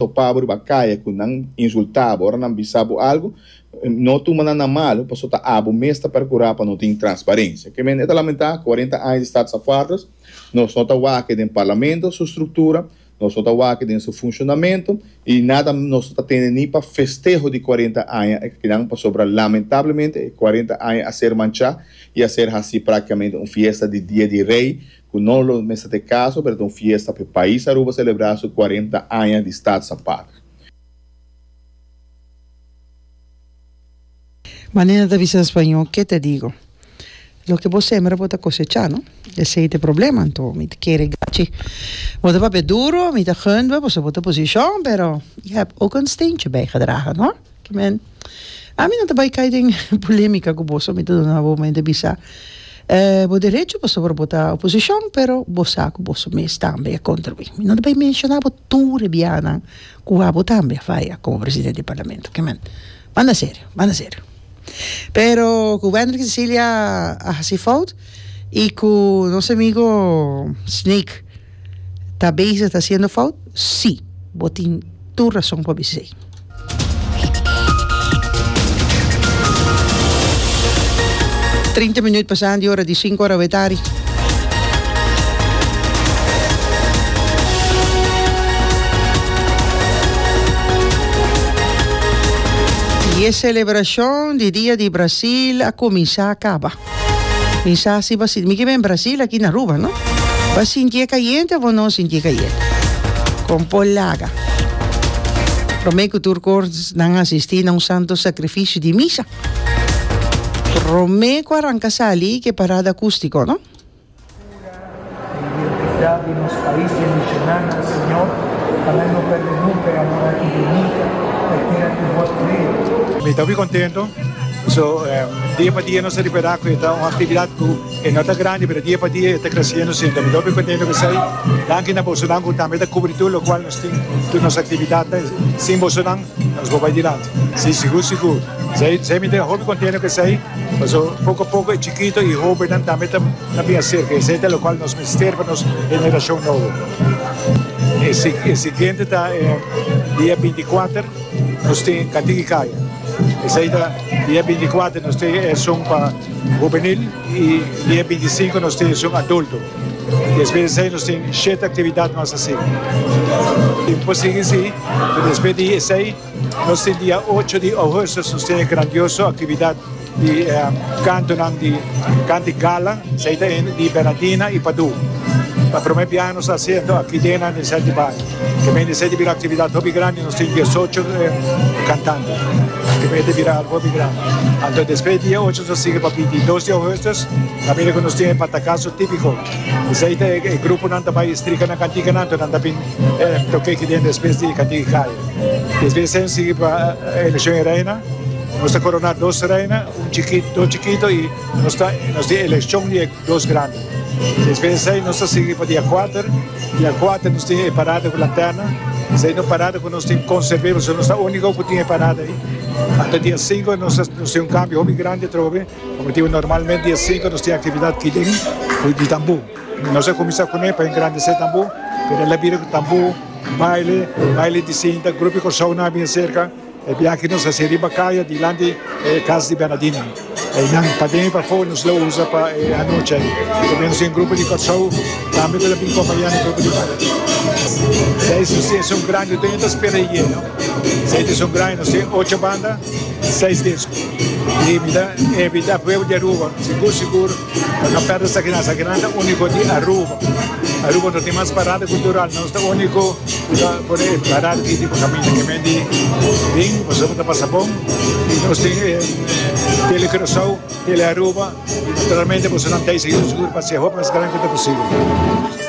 topa bo riba kaya ku nan insultá bo ora nan bisa bo algu, no tuma nan na malu paso ta abo mes ta perkurá pa no tin transparensia. Ke men e ta lamentá, kuarenta aña di Status Afarders, nos no ta wak den Parlamento su struktura, nos no ta wak den su funshonamentu i nada nos no ta tende ni pa festeho di kuarenta aña e kinan pasobra lamentablemente e kuarenta aña a ser manchá i a ser hasi praktikamente un fiesta di Dia di Rei Cu no lo mester ta e caso, pero ta un fiesta p'e pais Aruba celebra su cuarenta aña di Staat sa patria. Manera ta bisa en Spañol, Qué te digo? Lo que bo sembra bo ta cosecha, no? Esey ta e problema, anto mi ta kere gachi. Bo ta papia duro, mi ta gunde bo pasobra bo ta posicion, pero je hebt ook een steentje bijgedragen, hoor. Amen. Ami no ta bai cai den polemica cu boso, mi ta duna bo mente bisa, eh, bo derecho pasobra bo ta oposicion, pero bo sa cu boso mes tambe a contribui. Mi no ta bai menciona bo tur e biahanan cu abo tambe a faya como presidente di Parlamento. Oke amen. Banda serio, banda serio. Pero cu Wendrick Cecilia a haci fout y cu nos amigo Snake, ta bezig ta hasiendo fout? Sí, bo tin tur rason pa bis'é. Trinta minuut pasando di ora di sinku ora awor tardi. Y e celebracion di dia di Brasil a cuminsa a caba. Mi sa si bo a sinti, mi ke ben Brasil aki na Aruba no, bo a sintié kayente o bo no sintié kayente? Kon por laga promé ku tur korsnan asistí na un santo sakrifisio di misa, promé ku a ranka sali ke parada akústiko no? Cura e identidad di nos pais y e misionannan, Señor, pa nan no perde nunca e amor aki bonico pa e tera cu Bo a crea. Mi ta hopi contento, so dia pa dia nos ta ripera cu e ta un actividad cu e no ta grandi pero dia pa dia e ta creciendo siempre, mi ta hopi contento cu esey, danki na bosonan cu tambe ta cubri tur locual nos tin, tur nos actividadnan, sin bosonan. Nos bo bai dilanti. Sí, sigur sigur. Esei mi ta hopi contento cu esei, paso poco a poco e chikito y hobernan tambe ta bin acerca, y esei ta locual nos mester pa nos generacion nobo. E siguiente ta dia binti kuater, nos tin Cantiki Caya, esei ta dia binti kuater nos tin esun pa hubenil y dia binti sinku nos tin esun adulto. Despues di esei nos tin shete actividad mas así. Tin por sigui si. Pero despues di esey nos tin dia ocho di ougùsto nos tin e grandioso actividad di cantonan di Cantic Gala, esey ta hende di Bernardina y Padu. Pa prome biaha nos ta haci anto aki den nan esey di baño. Ta bini esey ta bira actividad hopi grandi, nos tin diesocho cantante. Ta bini ta bira algo hopi grandi. Anto despues di dia ocho nos a sigui pa bintidos di ougùsto, ta bini cu nos tin e Batacazo Tipico. Esey ta e gruponan ta bay y strika nan canticanan anto nan ta bin. Em toke ki den despues di Ikatiki Kaya. Despues em sigui pa elekshon e reina. Nos ta koroná dos reina, un chikito, dos chikito i nos ta, nos tin elekshon di e dos grandi. Despues esei nos ta sigui pa dia kuater. Dia kuater nos tin e parada ku lanterna. Esei ta un parada ku nos tin konserb'é pasobra nos ta úniko ku tin e parada ei. Ata dia sinku nos ta, nos tin un kambio hopi grandi atrobe. Kòmetido normalmente dia sinku nos tin aktividat kidin, ku di tambú. Nos a kuminsá kuné pa engrandesé tambo, pero el a bira ku tambo, baile, baile di sinta, grupo di Kòrsounan a bin serka, e biaha ki nos a hasi riba kaya dilanti e kas di Bernadino. Einan paden i pafó nos lo usa pa e anochi ei. Tambe nos tin grupo di Kòrsou tambe ku ta bin kompañá e grupo di Bernadino. Esei su si esun grandi, no ta yenta spera e yeno. Esei ta esun grandi, nos tin ocho banda, seis disko. I mi ta invitá pueblo di Aruba, sigur sigur, Lo no perde esaki nan, esaki nan ta unico di Aruba. Aruba no tin mas parada cultural, nos ta unico cu ta por e parada aki tin por caminda keme di bin pasobra bo ta pasa bon y nos tin e tele Curacao, tele Aruba y naturalmente boso nan ta y sigindo sigur pa haci e hopi mas grandi cu ta posible.